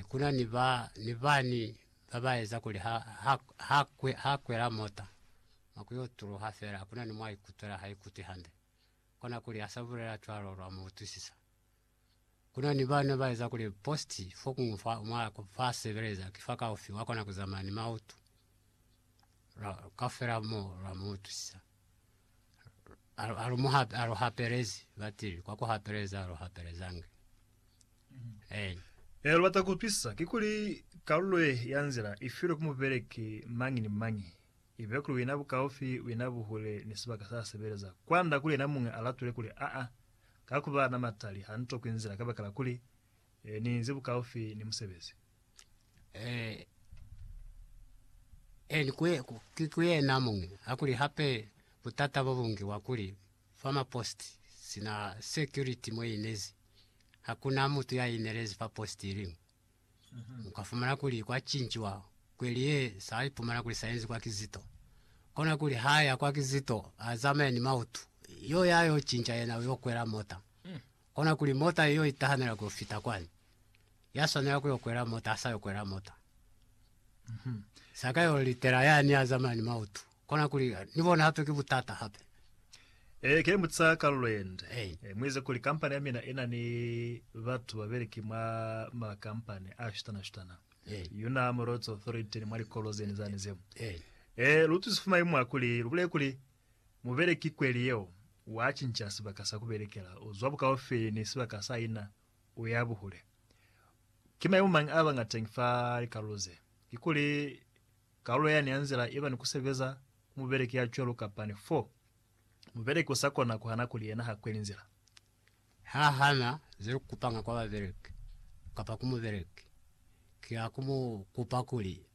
Kuna ni ba ni bani ba ba eza kuli ha, ha, ha, kwe, ha kwela mota, mwa ku yo tuluha fela, kuna ni mwa ikutwela ha ikuti hande. Kona kuli ha sa bulela cwalo, lwa mu utwisisa. Kuna ni bani ba ba eza kuli post fo kuñwi fa, mwa, fa sebeleza, ki fa kaufi, wa kona ku zamaya ni mautu. Lwa, kaufela mo, lwa mu utwisisa. aluhapelezi batili kwa kuhapeleza aluhapelezange eh Ee, lubata kupisa kikuli kalulo ye ya nzila ifilwe ku mubeleki mañi ni mañi, ibe kuli wina bukaufi, wina buhule ni sibaka sa sebeleza, kwanda kuli yena muñwi alatule kuli aa, kakuba na matali, hanitokwi nzila kabakala kuli, ee, niinzi bukaufi ni musebezi. eni kwe ki kwena muñwi hakuli hape butata bo bungi wa kuli fama post sina security mwe inezi hakuna mutu ya inelezi fa post iliñwi ukafumana kuli kwa cinjiwa kweli ye sa ipumana kuli sa yenziwa kizito kona kuli haya kwa kizito azame ni mautu yo ya yo cinja yena uyo kwela mota Kona kuli mota iyo itahamela kuyo fita kwani, ya swanela kuyo kwela mota asa yo kwela mota. Saka yo litela yani a zamaya ni mautu. Kona kuli ni bona hape ki butata hape. Ee, ke mutisa ka lulwende. Ee. Eh, muize kuli kampani ya mina ina ni batu babeleki mwa makampani a shutana-shutana. Ee. Yona mu Roads Authority ni mwa likolo zeni zani zeo. Ee. Eh, lu tusi fuma imwa kuli lu bulele kuli Mubeleki kweli yeo wa cinca sibaka sa ku belekela, u zwa bukaufeli ni sibaka sa ina u ya buhule. Ki maimo mañi a ba nga teñi fa likalulo ze? Kikuli kalulo yani ya nzila i ba ni ku sebeza ku mubeleki ya cwalo kapa ni fo mubeleki u sa kona ku hana kuli yena ha kweli nzila? Ha hana ze lu kupanga kwa babeleki kapa ku mubeleki, ki ha ku mu kupa kuli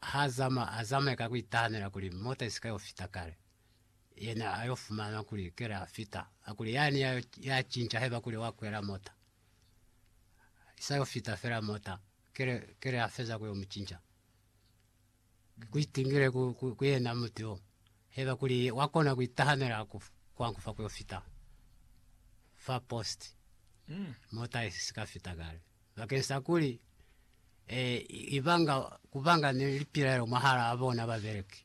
Ha a zama, a zamaya ka ku itahamela kuli mota i si ka yo fita kale. Yena a yo fumana kuli kele a fita, a kuli, Yani ya, ya cinca haiba kuli wa kwela mota. I sa yo fita fela mota, kele, kele a feza ku yo mu cinca. Ku itingile ku, ku, ku yena mutu yo, haiba kuli wa kona ku itahamela ku, kwa ku fa ku yo fita fa post, mota i si ka fita kale. Bakeng sa kuli ibanga kubanga ni lipilaelo mwahalaa bona babeleki,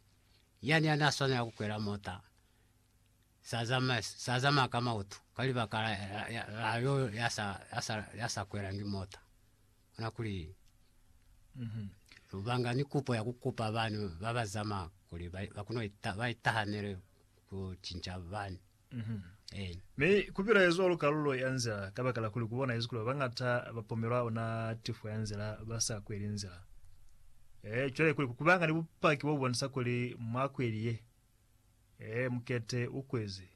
yani ya n'a swanela ku kwela mota s'a zamaya ka mautu ka libaka la yo ya sa kwelangi mota. Ona kuli lu banga ni kupo ya ku kupa bana ba ba zamaya kuli ba itahanele ku cinca bana. Mi ku bilaezwa lu kalulo ya nzila kabakala kuli ku bonahezi kuli babañata ba pomelwa ona tifo ya nzila ba sa kweli nzila. Ee, cwale kuli kubanga ni bupaki bo bonisa kuli mwa kweli ye. Ee, mukete u kwezi.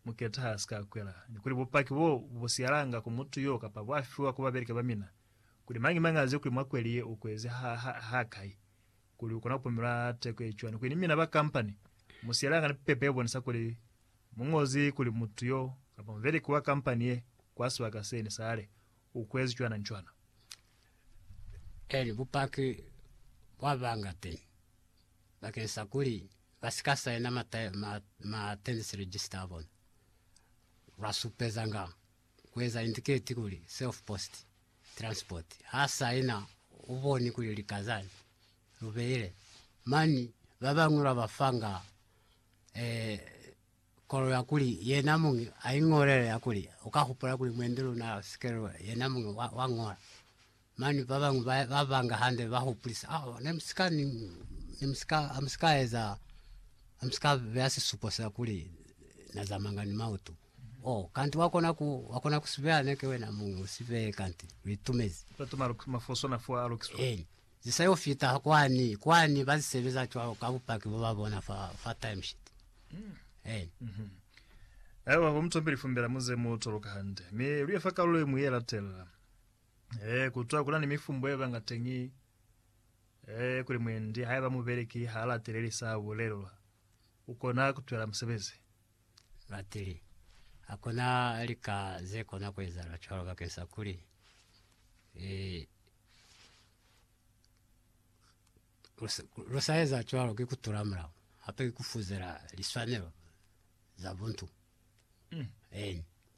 Mukete ha si ka kwela. Ni kuli bupaki bo bu siyalanga ku mutu yo kapa bwa fiwa ku babeleki ba mina, kuli mañi mañi aze kuli mwa kweli ye u kwezi ha, ha, ha kai. Kuli u kona ku pumula teko ye cwani kuli ni mina ba kampani mu sielanga ni pepa ye bonisa kuli mu ñozi kuli mutu yo kapa mubeleki wa kampani ye kwa sibaka se ni sale u kuezi cwana ni cwana? Eli bupaki bwa banga teñi bakeng sa kuli ba si ka saina ma tenancy register a bona, lwa supezanga kueza indicate kuli self post transport ha saina uboni kuli likaza lubeile mani babañwi babafanga eh, kolo ya kuli yena mungi aingolele ya kuli ukahupula kuli mwendi luna sikelo yena mungi wa, wa ngola Mane ba bañwi ba ba banga hande ba hupulisa, Ah, ne mu si ka ni, ne mu si ka, ha mu si ka eza, ha mu si ka beya sisupo sa kuli na zamanga ni mautu. Oh, kanti wa kona ku, wa kona ku si beya, ne ki wena muñwi u si beye, kanti lu itumezi. Bat'o ma luki, mafoso na fuwa a lukiswa. Eeni. Ze sa yo fita kwani, kwani ba zi sebeza cwalo ka bupaki bwa ba bona fa, fa timesheet. Eeni. Haiba bo mu topeli fumbela mu ze mu toloka hande, mi lu ye fa kalulo ye ñwi ye latelela, Ee, kutwa kuna ni mifumbo yebanga teñi ee kuli mwendi haiba mubeleki ha lateleli sa bulelwa, ukona kutwela musebezi. Lateli. Hakuna lika zekona kuezahala cwalo bakeng sa kuli ee lusaeza cwalo ki kutula mulao hape ki kufuzela liswanelo za buntu. Eeni.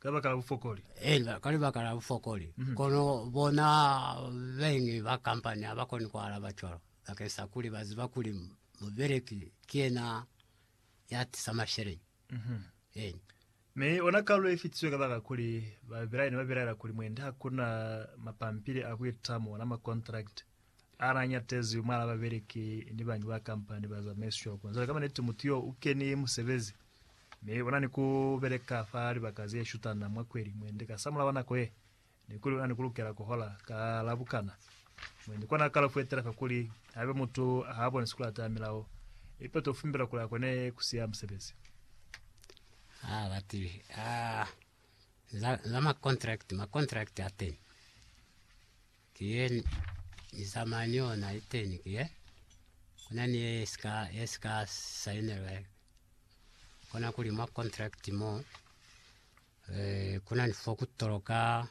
Kabakala bufokoli. Eena, ka libaka la bufokoli. Kono bona baingi ba kampani ha ba koni ku alaba cwalo, bakeng sa kuli ba ziba kuli mubeleki ki yena ya tisa masheleñi. Eena. Mi ona kalu ye fitisiwe kabakala kuli babelaeli ne ba belaela kuli mwendi ha ku na mapampili a ku itamo, ona makontrakiti. Ha na ñatezi mwal'a babeleki ni bañi ba kampani ba zamaiswa kuna. Cwale ka maniti mutu yo u keni musebezi mi u na ni ku beleka fa libaka ze shutana mwa kweli mwendi. Ka samulaho wa nako ye, ni kuli u na ni ku lukela ku hola ka la bukana mwendi. Kona a kala ku etela fa kuli haiba mutu ha bonisi ku lata milao ye peto u fumbelwa kuli a kone ku siya musebezi. Ha ba tibi za makontrakiti, makontrakiti a teñi. Ki ye Ni zamaya ni yona liteni ki ye, kuna ni ye ye si ka sainelwa kona kuli mwa contract mo, eh, kuna ni fo ku toloka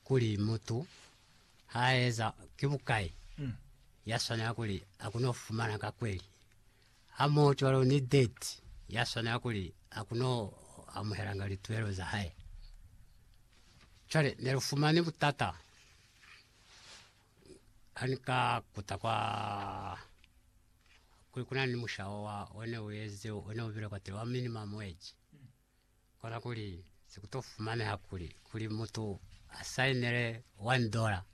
kuli mutu ha eza ki bukai, ya swanela kuli akuno fumana ka kweli. Hamohocwalo ni debt yaswanela kuli akuno amuhelanga lituelo zahae. Cwale nelufumani butata hanika kuta kwa kuli kunani ni mushawa wa one uezile one ubile kwatile wa minimum wage. Kona kuli sikuto fumaneha kuli kuli mutu asainele one dollar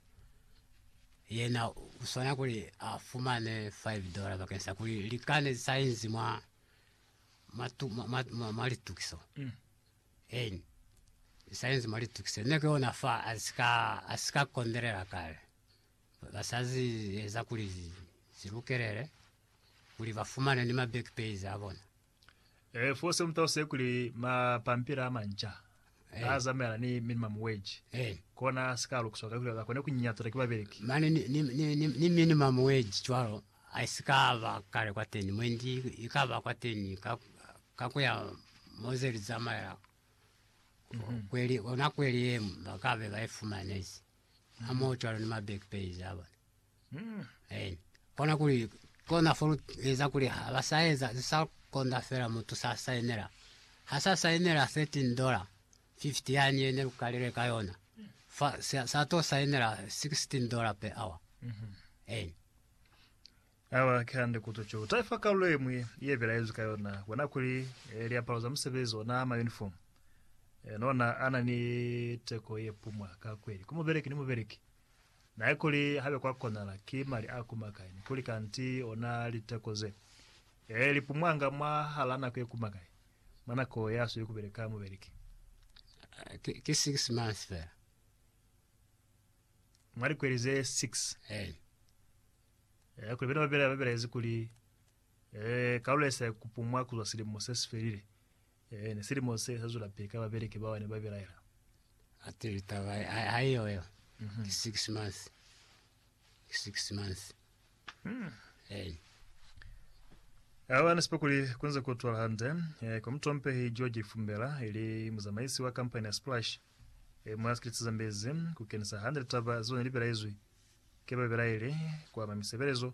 yena uswana kuli afumane five dollar bakeng sa kuli lika ne lisainzi mwa matu mwa litukiso mm. en lisainzi mwa litukiso ne ke ona fa asika asika kondelela kale basazi eza kuli zilukelele kuli bafumane ni ma back pays abona Eh, fose muta use kuli mapampila amanca Eh. azamela ni minimum wage Eh. kona sika lukuswa ka kuli bakone kunyinyatula ki babeleki. Mane ni, ni, ni, ni, ni minimum wage cwalo aisikaba kale kwateni mwendi ikaba kwateni ka, ka kuya moze lizamaela kweli ona kweli yemu bakabe baifumanezi hamoho cwalo ni ma back pays abona. Amen. Kona kuli kona fo lu eza kuli ha ba sa eza ze sa konda fela mutu sa sainela ha sa sainela 13 dollar 50 yani ye ne lu kalile ka yona fa sa, sa to sainela 16 dollar per hour eh Awa ke hande kuto cho. Utai fa kalulo ye mwi ye bela yezu ka yona. Bona kuli eh, liapalo za musebezi ona ma uniform. Eh, nona ana ni teko ye pumwa ka kweli. Ku mubeleki ni mubeleki. Nae kuli habe kwa konahala ki mali a kuma kai, ni kuli kanti ona liteko ze, ee, li pumwanga mwa hala nako ye kuma kai, mwa nako ya sweli kubeleka mubeleki. Ki, ki six months fela. Mwa likweli ze six. Ee. Ee, kuli bena ba bela, ba belaezi kuli, ee, kalulo yesa ya kupumwa kuzwa silimo se si felile. Amen. Silimo se sa zula pili ka babeleki bao ne ba bilaela. Ati litaba haiyo yo ki six months, ki six months. Eh, Abana sipa kuli kunze kutwala hande eh, kwa mutompehi George Fumbela ili muzamaisi wa kampani ya Splash eh, mwa sikiliti Zambezi kukenisa hande litaba zeo ne libelaizwi ke babilaeli kwa mwa misebelezo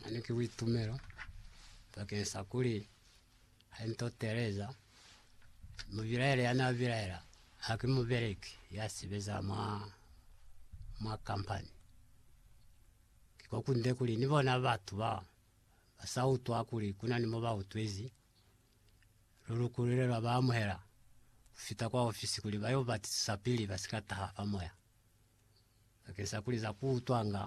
Mane ki buitumelo bakeng sa kuli ha nto teeleza mubilaele ya na bilaela ha ki mubeleki ya sebeza mwa mwa company. Ki ko kunde kuli ni bona batu ba ba sa utwa kuli ku na ni mo ba utwezi, lu lukulile lwa ba amuhela ku fita kwa ofisi kuli ba yo batisisa pili ba si ka taha fa moya. Bakeng sa kuli za ku utwanga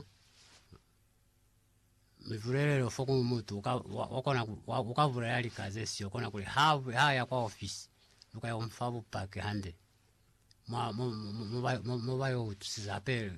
mibulelelo fo ku mutu uka bulela lika ze sio, kona kuli ha ya kwa ofisi lu ka yo mu fa bupaki hande mo ba yo utwisisa hape.